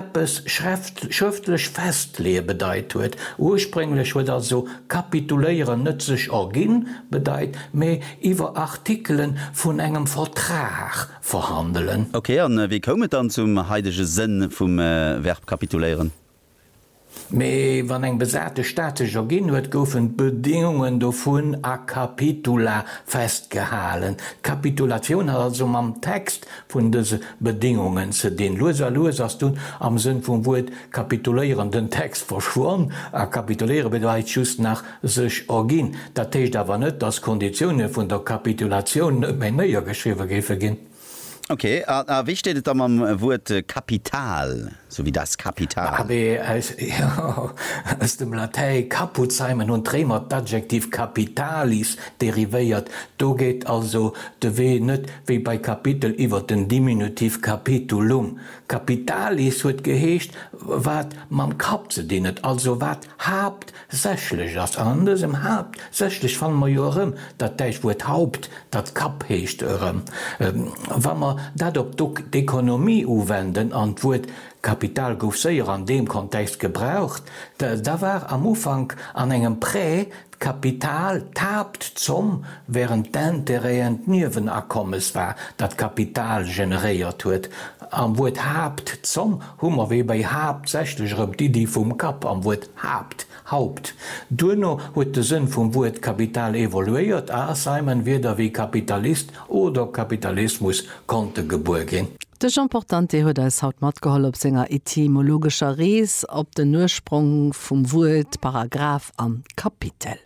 eppes schrëftlech festleeë bedeit huet. Ursprénglech huet also kapituléieren net sech erginn bedeit, mee iwwer Artikele vun engem Vertrag verhandelen. Ok, a wéi koum et dann zum haidege Sënn vum Verb kapituléieren? Mee wann eng besate Stad sech erginn huet, goufen d'Bedéngungen dovun a Capitula festgehalen. D'Kapitulatioun hat also mam Text vun dëse Bedéngungen ze dinn. Lues a lues ass dunn am Sënn vum Wuert kapituléieren den Text verschwonn a kapituléiere bedeit just nach sech erginn. Dat heescht awer net, dass d'Konditioune vun der Kapitulatioun net méi néiergeschriwwe géife ginn. Ok, a wéi steet et da mam Wuert Kapital, sou wéi das Kapital? Abé, aus, jo, aus dem Latäi Kaputzheimen hunn d'Réimer d'Adjektiv capitalis derivéiert. Do geet also de Wee net wéi bei Kapitel iwwer den Diminutiv capitulum. Capitalis huet geheescht, wat mam Kapp ze dinn huet, also wat Haapt Sächlech ass, an an dësem Haapt sächlech fanne mer jo erëm dat däitscht Wuert Haupt, dat Kapp heescht, erëm. Wa mer dat op d'Dok d'économie uwenden, an d'Wuert Kapital gouf séier an deem Kontext gebraucht, da war am Ufank an engem Prêt d'Kapital d'Haaptzomm, wärend d'Intérêten d'Niewenakommes war, dat d'Kapital generéiert huet. Am Wuert Haapt, Zomm, hu mer wéi bei haaptsächlech erëm d'Iddi vum Kapp am Wuert Haapt, Haupt. Duerno huet de Sënn vum Wuert Kapital evoluéiert a Simon Wierder wéi Kapitalist oder Kapitalismus konnte gebuer ginn. De Jean Portante huet eis haut matgeholl op senger etymologescher Rees op den Ursprong vum Wuert Paragraph an Kapitel.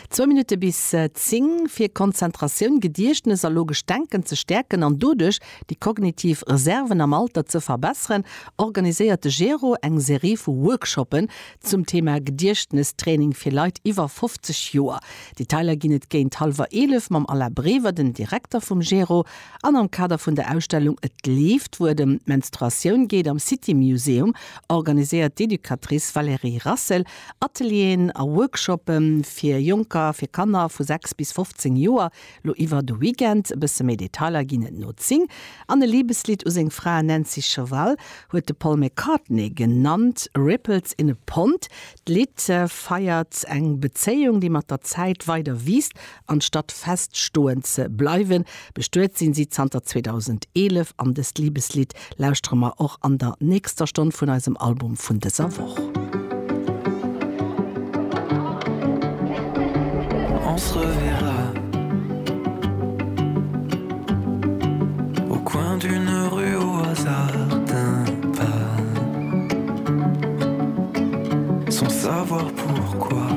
Zwou Minutte bis 10 fir Konzentratioun, Gediechtnes a logescht Denken ze stäerken an doduerch déi kognitiv Reserven am Alter ze verbesseren, organiséiert de GERO eng Serie vu Workshoppen zum Thema Gediechtnestraining fir Leit iwwer 50 Joer. Detailer ginn et géint hallwer 11 mam Alain Brever, den Direkter vum GERO, an am Kader vun der Ausstellung Et leeft, wou et ëm d'Menstruatioun geet, am City Museum, organiséiert d'Educatrice Valérie Rassel. Atelieren a Workshoppe fir Jonker, fir Kanner vu 6 bis 15 Joer, lo iwwer de Weekend. E bësse méi Detailer ginn et no 10. An e Libeslidd u seng Fra Nancy Cheval huet de Paul McCartney genannt, Ripples in a Pond. D'Lidd feiert eng Bezéiung, déi mat der Zäit weider wiisst Anstatt fest stoen ze bleiwen, bestuet sinn si zanter 2011 an dëst Liebeslied lauschtere mer och an der nächster Stonn vun eisem Album vun dëser Woch. On se reverra au coin d'une rue au hasard d'un pas sans savoir pourquoi.